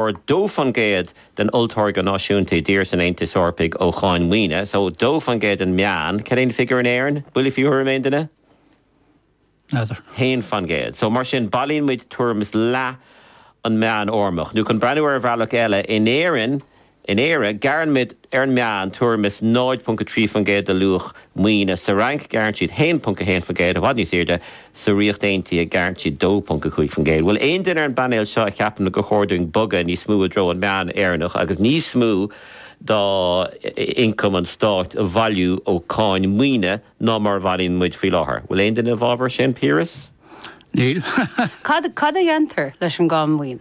ar 2% den Olltáirgeadh Náisiúnta i dtír san Aontas Eorpach ó Cháin Mhaoine, so 2% an meán, cad é an figiúr in Éirinn? Buille faoi thuairim aon duine? N'fheadar. 1%. So mar sin, bailíonn muid tuairim is leath an meán Eorpach. Nó chun breathnú ar bhealach eile, in Éirinn, in Éire, gearrann muid, ar an meán, tuairim is 0.3% de luach maoine, sa Fhrainc, gearrann siad 1.1%, i bhfad níos airde, Sa Ríocht Aontaithe gearrann siad 2.5 faoin gcéad. Bhfuil aon duine ar an bpainéal seo a cheapann gur chóir dúinn bogadh níos mó i dtreo an meán Éireannach agus níos mó d'ioncam an stáit a bhailiú ó cáin maoine ná mar a bhailíonn muid faoi láthair? Bhfuil aon duine i bhfabhar sin, Piaras? Níl. Cad a dhéantar leis an gcáin mhaoine?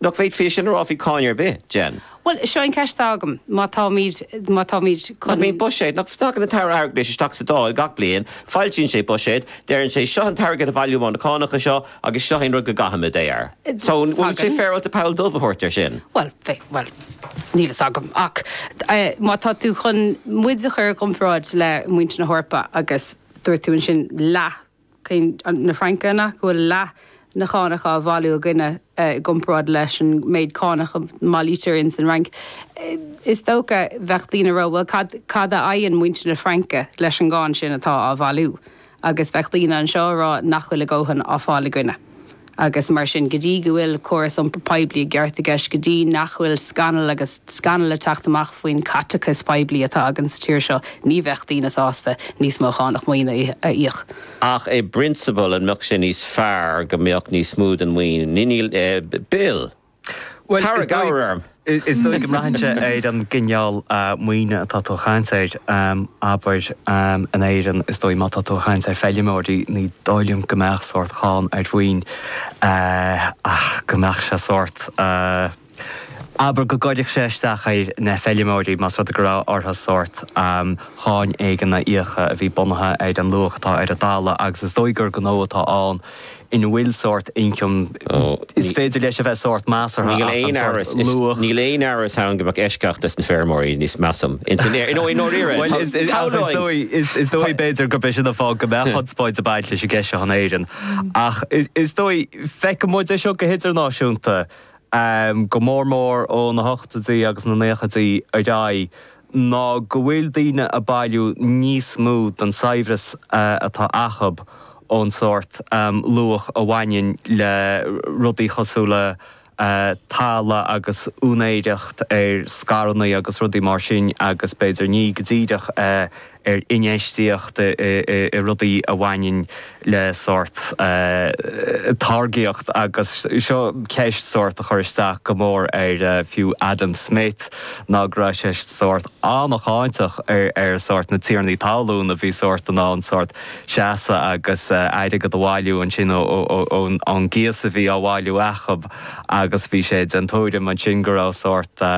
Nach bhféadfaí sin a rá faoi cáin ar bith, Jen? Bhuel, seo an cheist atá agam. Má táimid, má táimid chun. Nach mbíonn buiséad, nach dtagann an tAire Airgeadais isteach sa Dáil gach bliain, foilsíonn sé buiséad, deireann sé seo an t-airgead a bhailíomar ó na cánacha seo agus seo é an rud go gcaithfimid é air. So, an bhfuil sé féaráilte poll dubh a thabhairt air sin? Bhuel, bheadh, bhuel, níl fhios agam. Ach má tá tú chun muid a chur i gcomparáid le muintir na hEorpa agus dúirt tú ansin leath, ceann na Fraince go bhfuil leath na cánach á bhailiú againne i gcomparáid leis an méid cánach a mbailítear ins an Fhrainc. Is dócha bheadh daoine a rá, bhuel cad, cad a fhaigheann muintir na Fraince leis an gcáin sin atá á bhailiú? Agus bheadh daoine anseo a rá nach bhfuil a ndóthain á fháil againne. agus mar sin, go dtí go bhfuil córas iompair phoiblí i gceart i gceist, go dtí nach bhfuil scannal agus scannal ag teacht amach faoin caiteachas poiblí atá againn sa tír seo, ní bheadh daoine sásta níos mó cánach maoine a íoc. Ach i bprionsabal, an mbeadh sé níos fearr go mbeadh níos mó den mhaoin in Bill Bhuel, is dóigh is dóigh go mbraitheann sé ar an gcineál maoine atá tú a chaint air. Abair, in Éirinn, is dóigh má tá tú a chaint ar feilmeoirí ní dóigh liom go mbeadh sórt cháin ar mhaoin ach go mbeadh sé sórt abair go gcuirfeadh sé isteach ar na feilmeoirí más rud é go raibh orthu sórt cháin éigin a íoc a bhí bunaithe ar an luach atá ar an talamh agus is dóigh gur gnó atá ann ina bhfuil sórt ioncam, is féidir leis a bheith sórt measartha ach an sórt luach. Níl aon amhras ann go mbeadh eisceacht do na feirmeoirí níos, measaim. I ndáiríre, shamhlóinn. Is dóigh, b'fhéidir, gurb é sin an fáth go mbeadh conspóid ag baint leis an gceist seo in Éirinn. Ach is dóigh, feiceann muid é seo go hidirnáisiúnta, go mór mór ó na hochtóidí agus na nóchaidí ar aghaidh. ná go bhfuil daoine a bailiú níos mó don saibhreas atá acub ón sórt luach a bhaineann le rudaí chosúil le talamh agus úinéireacht ar scaireannaí agus rudaí mar sin agus b'fhéidir ní go díreach ar infheistíocht i rudaí a bhaineann le sórt táirgíocht agus seo ceist sórt a chur isteach go mór ar fiú Adam Smith ná go raibh sé sórt an-cháinteach ar sórt na tiarnaí talún a bhí sórt in ann sórt seasamh agus airgead a bhailiú ansin ón gcíos a bhí á bhailiú acu agus bhí sé den tuairim ansin go raibh sórt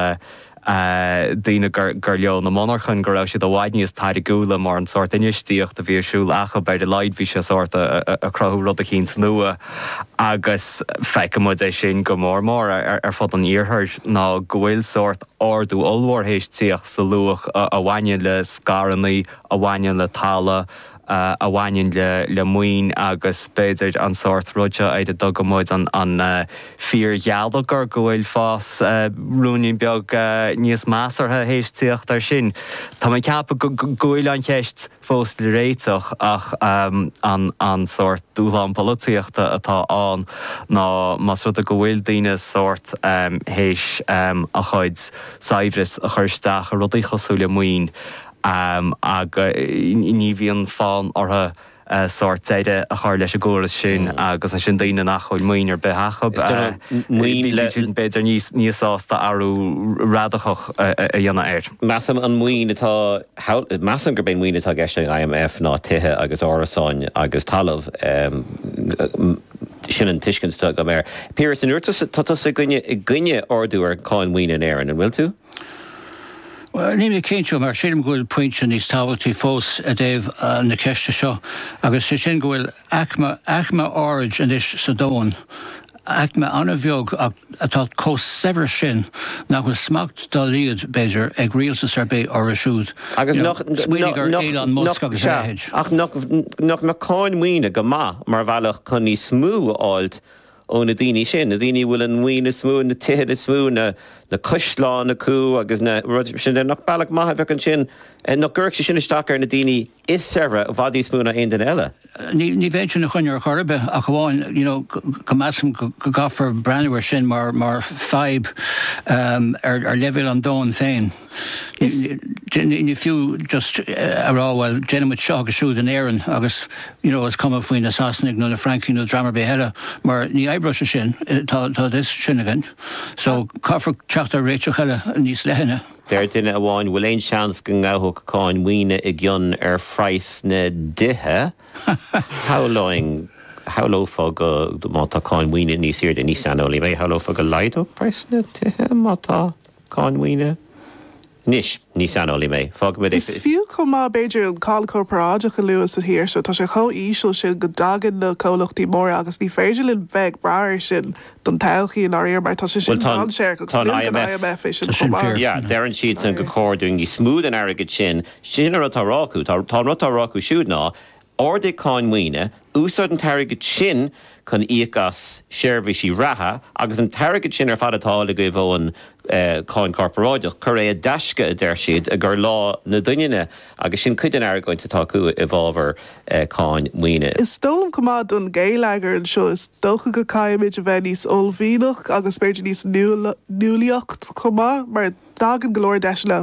daoine gur leo na monarchain, go raibh siad i bhfad níos táirgiúla mar an sórt infheistíocht a bhí ar siúl acub. Ar a laghad bhí sé sórt a cruthú rud eicínt nua agus feicimid é sin go mór mór ar fud an iarthair ná go bhfuil sórt ardú ollmhór théis tíocht sa luach a bhaineann le scaireanna, a bhaineann le talamh, a bhaineann le maoin agus b'fhéidir an sórt rud seo ar a dtugaimid an fíorgheilleagar, go bhfuil fás ruainnín beag níos measartha théis tíocht air sin. Tá mé ag ceapadh go bhfuil an cheist fós le réiteach ach an sórt dúshlán polaitíochta atá ann ná más rud é go bhfuil daoine sórt théis a chuid saibhreas a chur isteach i rudaí cosúil le maoin, Ámh, ní bhíonn fonn orthu sórt deireadh a chur leis an gcóras sin agus ansin daoine nach bhfuil maoin ar bith acu, bíonn siad b'fhéidir níos sásta athrú radacach a dhéanamh air. Measaim, an mhaoin atá, measaim gurb é an maoin atá i gceist ag IMF ná tithe agus árasáin agus talamh, sin an tuiscint atá agam air. Piaras, an bhfuil tusa, tá tusa i gcoinne, i gcoinne ardú ar cháin mhaoine in Éirinn, an bhfuil tú? Níl mé cinnte, mar sílim go bhfuil pointe níos tábhachtaí fós i dtaobh na ceiste seo, agus sé sin go bhfuil aicme, aicme áirid anois sa domhan, aicme an-bheag ach atá chomh saibhir sin nach bhfuil smacht dá laghad, b'fhéidir, ag rialtas ar bith orthu siúd. Agus nach, nach, nach, sea, ach nach, nach mbeadh cáin mhaoine go maith mar bhealach chun níos mó a fháilt, ó na daoine sin, na daoine a bhfuil an mhaoin is mó, na tithe is mó, na caisleáin acu agus na rudaí sin de, nach bealach maith a bheadh ansin, nach gcuirfeadh sé sin isteach ar na daoine is saibhre i bhfad níos mó ná aon duine eile? Ní bheinn ina choinne ar chor ar bith, ach amháin you know go measaim go gcaithfear breathnú air sin mar fadhb ar leibhéal an domhain féin. Is. Ní fiú just a rá, bhuel, déanfaidh muid seo agus siúd in Éirinn agus, you know, is cuma faoi na Sasanaigh nó na Francaigh nó dream ar bith eile mar ní oibreoidh sé sin. Tá a fhios sin againn. So caithfear teacht ar réiteach eile níos leithne. Deir duine amháin, bhfuil aon seans go ngabhadh cáin mhaoine i gcion ar phraghas na dtithe? Shamhlóinn, shamhlófá go, má tá cáin mhaoine níos airde, ní saineolaí mé, shamhlófá go laghdódh praghas na dtithe má tá. Cáin maoine? Anois, ní saineolaí mé, faoi agus is fiú chomh maith, b'fhéidir, an cáin chorparáideach a lua sa thír seo. Tá sé chomh híseal sin go dtagann na comhlachtaí móra agus ní féidir linn bheith ag brath air sin don todhchaí, i ndáiríre, mar tá sé sin dainséarach agus luaigh an IMF é sin chomh maith. Yeah, deireann siadsan gur chóir dúinn níos mó den airgead sin. Sin an rud atá á rá acu. Tá, an rud atá á rá acu siúd ná, Ardaigh cáin maoine, úsáid an t-airgead sin chun íoc as seirbhísí reatha agus an t-airgead sin ar fad atá agaibh ón cháin chorparáideach, cuir é i dtaisce, a deir siad, i gcomhair lá na doininne. Agus sin cuid den argóint atá acu i bhfabhar cáin maoine. Is dóigh liom chomh maith don gheilleagar anseo, is dócha go caithfimid a bheith níos uaillmhianach agus b'fhéidir níos nuálaíocht chomh maith mar, Tagann go leor deiseanna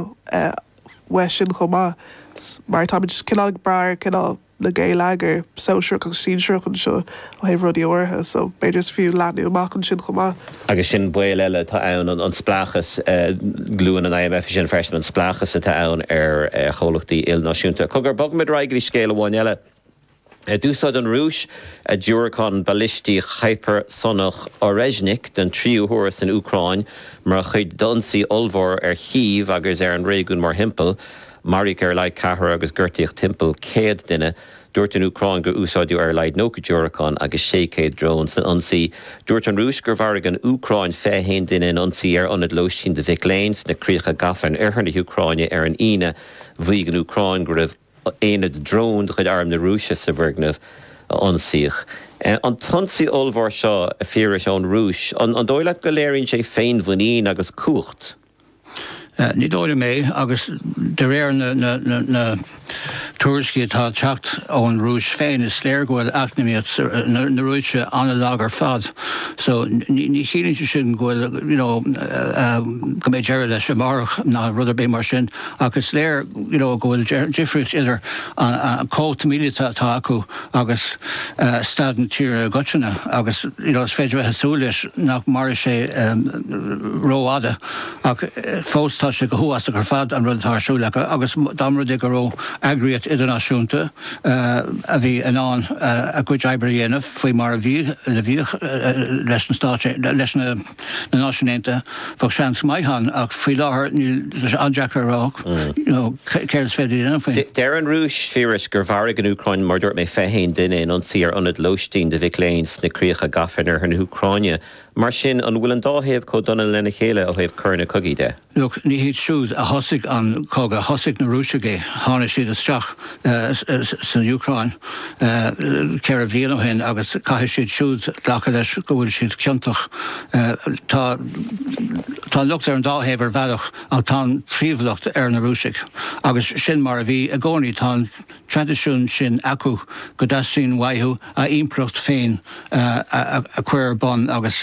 uaidh sin chomh maith mar táimid cineál ag brath ar chineál na ngeilleagar sóisearach agus sinsearach anseo ó thaobh rudaí áirithe so b'fhéidir is fiú leathnú amach ansin chomh maith. Agus sin baol eile atá ann, an spleáchas, luann an IMF é sin freisin, an spleáchas atá ann ar chomhlachtaí ilnáisiúnta. Cogar, bogfaimid ar aghaidh go dtí scéal amháin eile. D'úsáid an Rúis a diúracán balistíoch hipearsonach Oreshnik den tríú huair san Úcráin mar chuid d'ionsaí ollmhór ar Chív agus ar an réigiún mórthimpeall. Maraíodh ar a laghad ceathrar agus gortaíodh timpeall céad duine. Dúirt an Úcráin gur úsáideadh ar a laghad 90 diúracán agus 600 drón san ionsaí. Dúirt an Rúis gur mharaigh an Úcráin 21 duine in ionsaí ar ionad lóistín do mhic léinn sna críocha gafa in oirthear na hÚcráine ar an Aoine. Mhaígh an Úcráin go raibh. aonad drón de chuid Arm na Rúise sa bhfoirgneamh a ionsaíodh. An t-ionsaí ollmhór seo, a Phiarais, ón Rúis, an dóigh leat go léiríonn sé féinmhuinín agus cumhacht? Ní dóigh liom é, agus de réir na tuairiscí atá ag teacht ón Rúis féin, is léir go bhfuil eacnamaíocht na Rúise an-lag ar fad, so ní chiallaíonn sé sin go bhfuil, you know, go mbeidh deireadh leis amárach ná rud ar bith mar sin. Ach is léir go bhfuil difríocht idir an cumhacht míleata atá acu agus staid na tíre i gcoitinne agus is féidir bheith ag súil leis nach mairfidh sé rófhada ach fós tá sé go huafásach ar fad an rud atá ar siúl acu agus dá mba rud é go raibh eagraíocht idirnáisiúnta a bhí in ann a gcuid oibre a dhéanamh faoi mar a bhíodh leis na na Náisiúin Aontaithe, bheadh seans maith ann, ach faoi láthair níl. Tá sé an-deacair a rá céard is féidir a dhéanamh faoi. Deir an Rúis, a Phiarais, gur mharaigh an Úcráin mar a dúirt mé 21 duine in ionsaí ar ionad lóistín do mhic léinn sna críocha gafa in oirthear na hÚcráine. Mar sin, an bhfuil an dá thaobh chomh dona lena chéile ó thaobh coireanna cogaidh de? Look, ní hiad siúd a thosaigh an cogadh, thosaigh na Rúisigh é, tháinig siad isteach san Úcráin ceithre bhliain ó shin agus caithfidh siad siúd glacadh leis go bhfuil siad ciontach. Tá tá an locht ar an dá thaobh ar bhealach ach tá an príomhlocht ar na Rúisigh agus sin mar a bhí i gcónaí. traidisiún sin acu go dteastaíonn uathu a n-impireacht féin a chur ar bun agus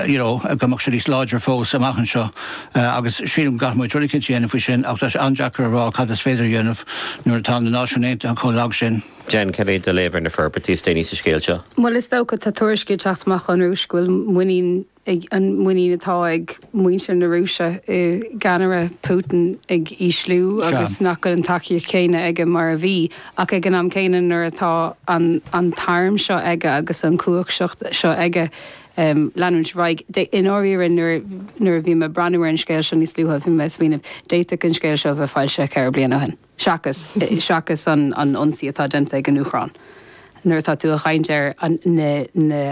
you know go mbeadh sé níos láidre fós amach anseo agus sílim go gcaithfidh muid rud éicint a dhéanamh faoi sin ach tá sé an-deacair a rá cad is féidir a dhéanamh nuair atá na Náisiúin Aontaithe chomh lag sin. Jen, cad é do léamh ar na forbairtí is déanaí sa scéal seo? Bhuel, is dócha, tá tuairiscí ag teacht amach ón Rúis go bhfuil muinín an muinín atá ag muintir na Rúise i gceannaire Putin ag ísliú agus nach bhfuil an tacaíocht chéanna aige mar a bhí. Ach ag an am céanna, nuair atá an t-arm seo aige agus an chumhacht seo aige leanúint ar aghaidh, i ndáiríre, nuair a bhí mé ag breathnú ar an scéal seo níos luaithe, bhí mé ag smaoineamh, d'fhéadfadh an scéal seo a bheith foilsithe ceithre bliana ó shin, seachas seachas an ionsaí atá déanta ag an Úcráin. Nuair atá tú ag caint ar na.